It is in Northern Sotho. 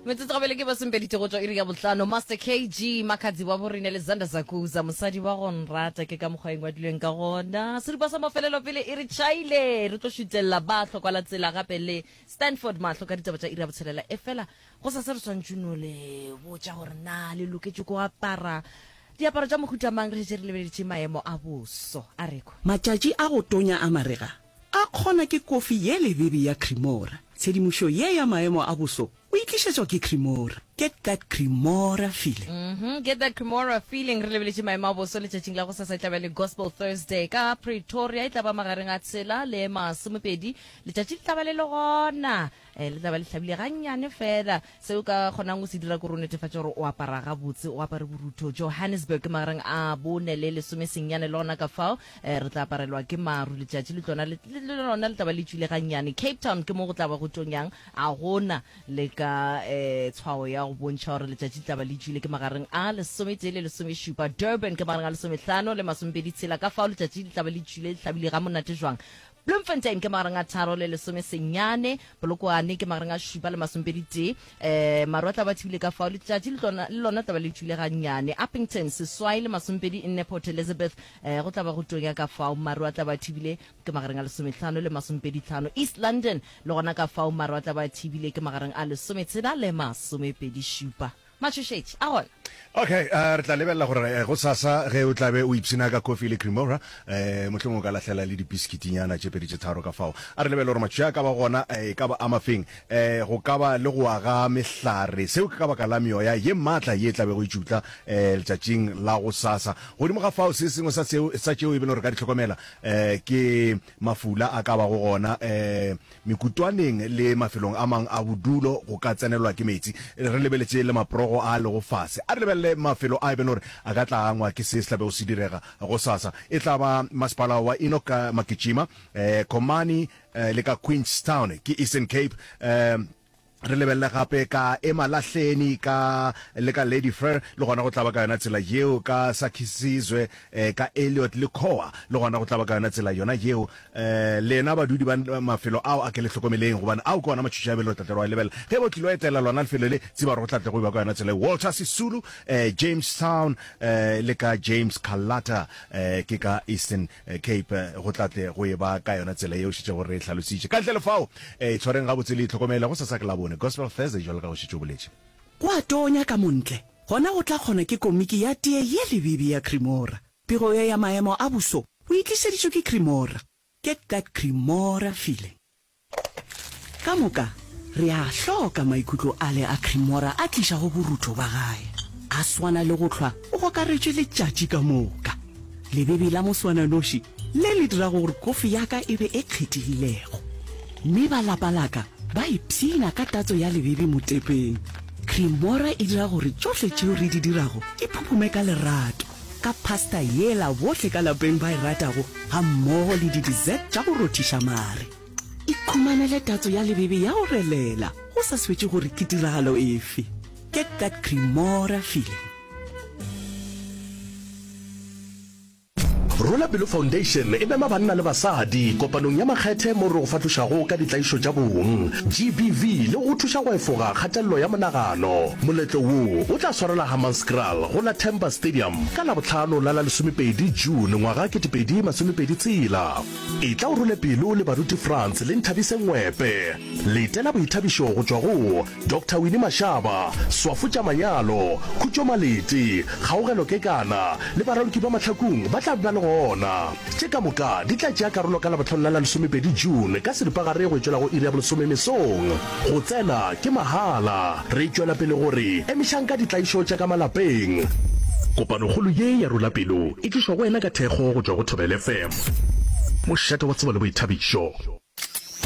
metsotso gabele ke basempedite go tšwa iri ya botlano master kg makgadzi wa borine le zander zakuza mosadi wa go nrata ke ka mokgwa e ngwadilweng ka gona seripa sa mafelelo pele e re chaile re tlo šutelela ba hlokwa la tsela gape le stanford mahlo ka ditaba tša iri ya botshelela e fela go sa se re swantšuno le botša gore na le loketše go apara diaparo tša mohutamang re šetse re lebeleditše maemo a boso a rekwa Matšatši a go tonya a marega A kgona ke kofi ye lebebe ya Cremora. Tshedimošo ye ya maemo a boso o e tlišetšwa ke Cremora. Get that Cremora feeling. Uhmm, get that Cremora feeling. Re lebeletše maemo a boso letšatšing la gosasa. E tla ba le Gospel Thursday ka Pretoria. E tla ba magareng a tshela le masomepedi. Letšatši le tla ba le le gona. um le tla ba le hlabile gannyane fela seo ka kgonang o se dira kore o netefatša gore o apara gabotse o apare borutho johannesburg ke magareng a bone le lesome sennyane le gona ka fao um re tla aparelwa ke maru letšatši le tsona le lona le tla ba le tswile gannyane cape town ke mo go tla ba go tonyang a gona le ka um tshwao ya go bontšha gore letšatši le tla ba le tswile ke magareng a lesometee le lesomešupa durban ke magareng a lesometlhano le masomepedi tshela ka fao letšatši le tla ba le tswile le hlabile ga monate jwang Bloemfontein ke magareng a tharo le lesome senyane, Polokwane ke magareng a šupa le masomepedi tee. Um, maru a tla ba thibile ka fao, letšatši le tlona le lona tla ba le tšwile gannyane. Upington seswai le masomepedi nne, Port Elizabeth um, go tla ba go tonya ka fao, maru a tla ba thibile ke magareng a lesometlhano le masomepedi tlhano. East London le gona ka fao, maru a tla ba thibile ke magareng a lesometshela le masomepedi šupa. Matšhošetši a gona. Okay, uh, re tla lebelela gore eh, go sasa ge o tlabe o ipsina ka coffee le cremora eh, mohlong o ka lahlela le dipisikitinyana tše pedi tše tharo ka fao a re lebele gore matšhoša a ka ba gona eh, e ka ba amafeng eh, go ka ba le go aga mehlare seo ke ka baka la meoya ye maatla ye e tlabe go itšutla eh, letšatšing la go sasa godimo ga fao se sengwe sa, seo, sa tšeo e bele gore ka di tlhokomela eh, ke mafula a ka ba go gona eh, Mekutwaneng le mafelong a mang a bodulo go ka tsenelwa ke meetse. Re lebeletše le maprogo a a lego fase. A re lebelele mafelo a e bego gore a ka tla angwa ke se se tla bego se direga gosasa. E tla ba masepala wa Enoch ka Maketšima, Komani le ka Queenstown, ke Eastern Cape, Re lebelele gape ka Ema Lahleni ka le ka Lady Fur, le gona go tla ba ka yona tsela yeo, ka Sakhisizwe eh, ka Elliot le Khoa, le gona go tla ba ka yona tsela yona yeo. Eh, lena badudi ba mafelo ao a ke le hlokomeleng, gobane ao ke ona matšhoši a be lo tla tle lo a lebella. Ge bo tlilo etela lona lefelo le, tseba gore go tla tle go e ba ka yona tsela yeo. Walter Sisulu, eh, Jamestown, eh, le ka James Kalata, eh, ke ka Eastern Cape, go tla tle go e ba ka yona tsela yeo, šetšego re e hlalositše. Ka ntle le fao, E itshwareng gabotse le itlhokomele, go sasa ke Labone, Gospel Thursday jwalo ka go šetše o boletše. Go a tonya ka montle, gona go tla kgona ke komiki ya tee ye lebibi ya Cremora. Pego ye ya maemo a boso o e tlišeditšwe ke Cremora. Get that Cremora feeling. Ka moka re a hloka maikutlo ale a Cremora a tlišago borutho ba gae. A swana le go hlwa o gokaretšwe letšatši ka moka. Lebebi la moswananoši le le dirago gore kofi ya ka e be e kgethegilego, mme ba lapa la ka ba ipshina ka tatso ya lebebi motepeng. Creamora e dira gore tšohle tšeo re di dirago di phuphume ka lerato, ka pasta yela bohle ka lapeng ba e ratago gammogo le di-dessert tša go rothiša mare. Ikhumanele tatso ya lebebi ya go relela go sa swetše gore ke tiragalo efe. Get that Creamora feeling! Rwela Pelo Foundation e mema banna le basadi kopanong ya makgethe moo re go fahlošago ka ditlaišo tša bong, GBV, le go go thuša go efoga kgatelelo ya monagano. Moletlo wo o tla swarelwa Hammanskraal go la Temba Stadium ka Labohlano la la lesomepedi June ngwaga ketepedi masomepedi tshela. Etla o rwele pelo le baruti Frans le Nthabise Ngwepe. Letela boithabišo go tšwa go. Doctor Winnie Mashaba, Swafo tša Manyalo, Khutšo Malete, Kgaogelo Kekana le Baraloki ba Mahlakung ba tla be ba le gona. Tše ka moka di tla tšea karolo ka Labohlano la la lesomepedi June ka seripagare go e tšwela go iri ya bolesome mesong. Go tsena ke mahala. Re tšwela pele go re emišang ka ditlaišo tša ka malapeng. Kopanokgolo ye ya Rula Pelo e tlišwa go wena ka thekgo go tšwa go Thobela FM, mošate wa tsebo le boithabišo.